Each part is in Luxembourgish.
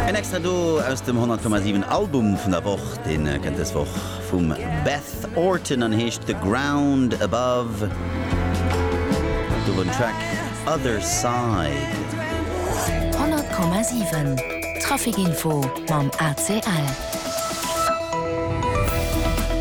En extra do aus dem 100,7 Album vun der Woch. Dee kënnt dës Woch vum Beth Orton an heescht The Ground Above. Do wor den Track Other Side. 100,7 Trafic Info mam ACL.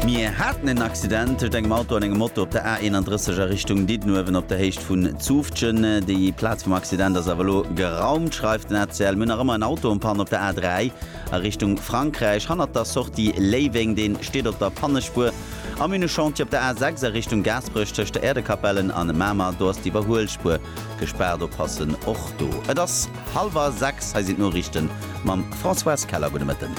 Mir haten en Accident tëscht engem Auto an engem Moto op der A31 a Richtung Diddenuewen op der Héicht vun Zoufftgen. Déi Plaz vum Accident ass awer elo geraumt, schreift den ACL. Mir hunn nach ëmmer en Auto en Panne op der A3 a Richtung Frankräich hannert der Sortie Léiweng. Deen steet op der Pannespuer. Am Ünechantier op der A6 a Richtung Gaasperech tëscht der Äerdekapellen an Mamer, do ass d'Iwwerhuelspuer Gespaart oppassen och do. Et ass hallwer 6, hei sinn d'Noriichten mam Françoise Keller. Gudde Mëtten.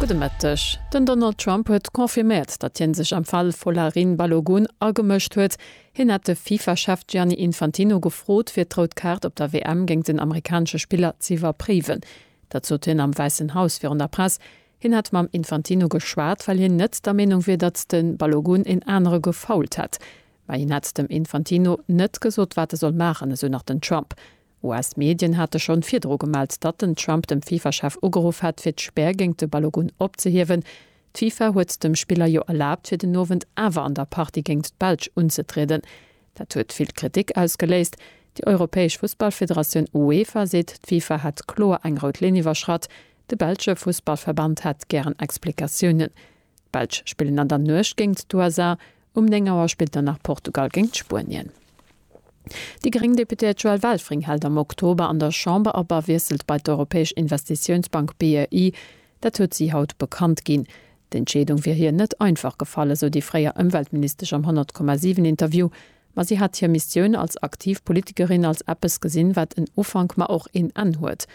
Gudde Mëtteg. Den Donald Trump huet confirméiert, datt hien sech am Fall Folarin Balogun agemëscht huet. Hien hätt de FIFA-Chef Gianni Infantino gefrot, fir d'Rout Kaart op der WM géint den amerikanesche Spiller z'iwwerpréiwen. Dat sot hien am Wäissen Haus virun der Press. Hien hätt mam Infantino geschwat, well hien net der Meenung wier, datt de Balogun een anere gefoult hätt. Mä hien hätt dem Infantino net gesot, wat e soll maachen, esou nach den Trump. US-Medien hate schonn virdru gemellt, datt den Trump dem FIFA-Chef ugeruff hätt, fir d'Spär géint de Balogun opzehiewen. D'FIFA huet dem Spiller jo erlaabt, fir den Owend awer an der Partie géint d'Belsch unzetrieden. Dat huet vill Kritik ausgeléist. Déi europäesch Fussballfederatioun UEFA seet, d'FIFA hätt kloer eng rout Linn iwwerschratt. De belsche Fussballverband hätt gären Explikatiounen. D'Belsch spillen an der Nuecht géingt d'USA. Um 9 Auer spillt dann nach Portugal géingt Spuenien. Déi gréng Deputéiert Joëlle Welfring hält am Oktober an der Chamber op a wiesselt bei d'Europäesch Investitiounsbank BEI. Dat huet si haut bekannt ginn. D'Entscheedung wier hir net einfach gefall, esou déi fréier Ëmweltministesch am 100,7 Interview. Ma si hätt hir Missioun als aktiv Politikerin als eppes gesinn, wat en Ufank, ma och een Enn huet.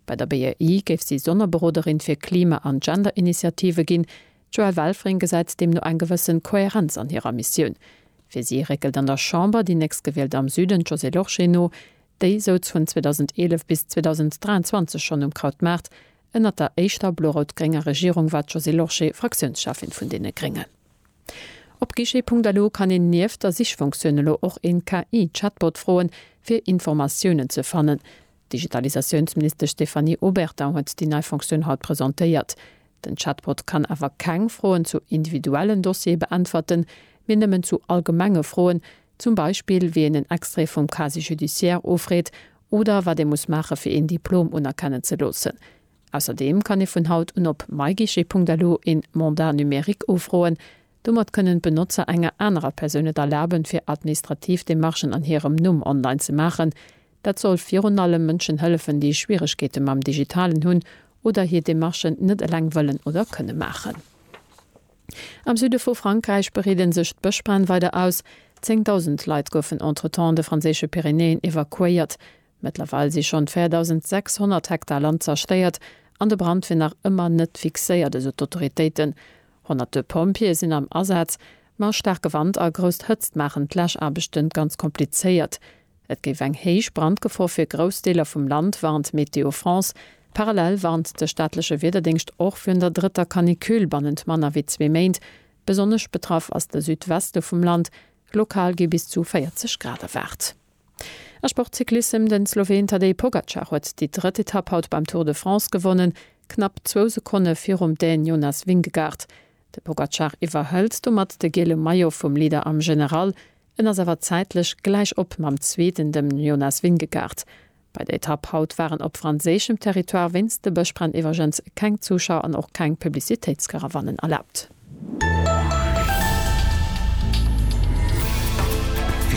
Bei der BEI géif si Sonnerberoderin fir Klima an Gender-Initiative ginn. D'Joëlle Welfring gesäit deemno eng gewëssen Kohärenz an hirer Missioun. Fir si réckelt an der Chamber déi Nächstgewielt am Süden, d'Josée Lorsché, no. Déi souz vun 2011 bis 2023 schonn um Krautmaart. Ënnert der éischter blo-rout-grénger Regierung war d'Josée Lorsché Fraktiounscheffin vun deene Gréngen. Op guichet.lu kann een nieft der Sichfunktioun elo och een KI-Chatbot froen, fir Informatiounen ze fannen. D'Digitalisatiounsministesch Stéphanie Obertin huet déi nei Fonctioun haut presentéiert. Den Chatbot kann awer keng Froen zu individuellen Dossiere beäntwerten, mee nëmmen zu allgemenge Froen, zum Beispill wéi een en Extrait vum Casier judiciaire ofreet oder wat ee muss maache fir een Diplom unerkennen ze loossen. Ausserdeem kann ee vun haut un op myguichet.lu een Mandat numérique ofroen. Domat kënnen d'Benotzer enger anerer Persoun et erlaben, fir administrativ Demarchen an hirem Numm online ze maachen. Dat soll virun allem Mënschen hëllefen, déi Schwieregkeete mam Digitalen hunn oder hir Demarchen net eleng wëllen oder kënne maachen. Am Süde vu Frankräich breede sech d'Bëschbränn weider aus. Zéngdausend Leit goufen entretemps de franséische Pyrenäen evakuéiert. Mëttlerweil si schonn 4.600 Hektar Land zerstéiert an de Brand wier nach ëmmer net fixéiert, esou d'Autoritéiten. Honnerte Pompjeeë sinn am Asaz, ma staarke Wand a grousst Hëtzt maachen d'Läschaarbechte ganz komplizéiert. Et géif eng héich Brandgefor fir grouss Deeler vum Land, warnt Météo France. Parallel warnt de staatleche Wiederdéngscht och virun der drëtter Canicule bannent manner wéi zwee Méint. Besonnesch betraff ass de Südweste vum Land, lokal gi bis zu 40 Grad erwaart. A Sportcyclissem, De Sloween Tadej Pogacar huet déi drëtt Etapp haut beim Tour de France gewonnen, knapp zwou Sekonne virum Dän Jonas Vingegaard. De Pogacar iwwerhëlt domat de gele Maillot vum Leader am General. En ass awer zäitlech gläich op mam Zweeten, dem Jonas Vingegaard. Bei der Etapp haut waren op franséischem Territoire wéinst de Bëschbränn iwwergens keng Zuschauer an och keng Publicitéitskarawannen erlaabt.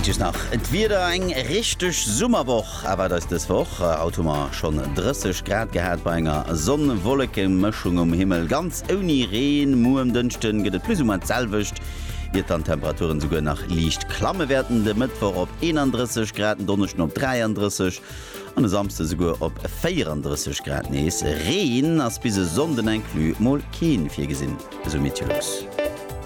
Wichteg nach d'Wieder, Eng richteg Summerwoch erwaart eis dës Woch. Haut hu mer schonn 30 Grad gehat bei enger Sonn-Wolleke-Mëschung um Himmel. Ganz Ouni Reen. Muer um Dënschde gëtt et plus ou moins d'selwecht, iert dann d'Temperaturen souguer nach liicht klamme wäerten, de Mëttwoch op 31 Grad, den Donneschden op 33 an e Samsde souguer op 34 Grad nees. Reen ass bis e Sonnden inclus mol keen virgesinn, esou Meteolux.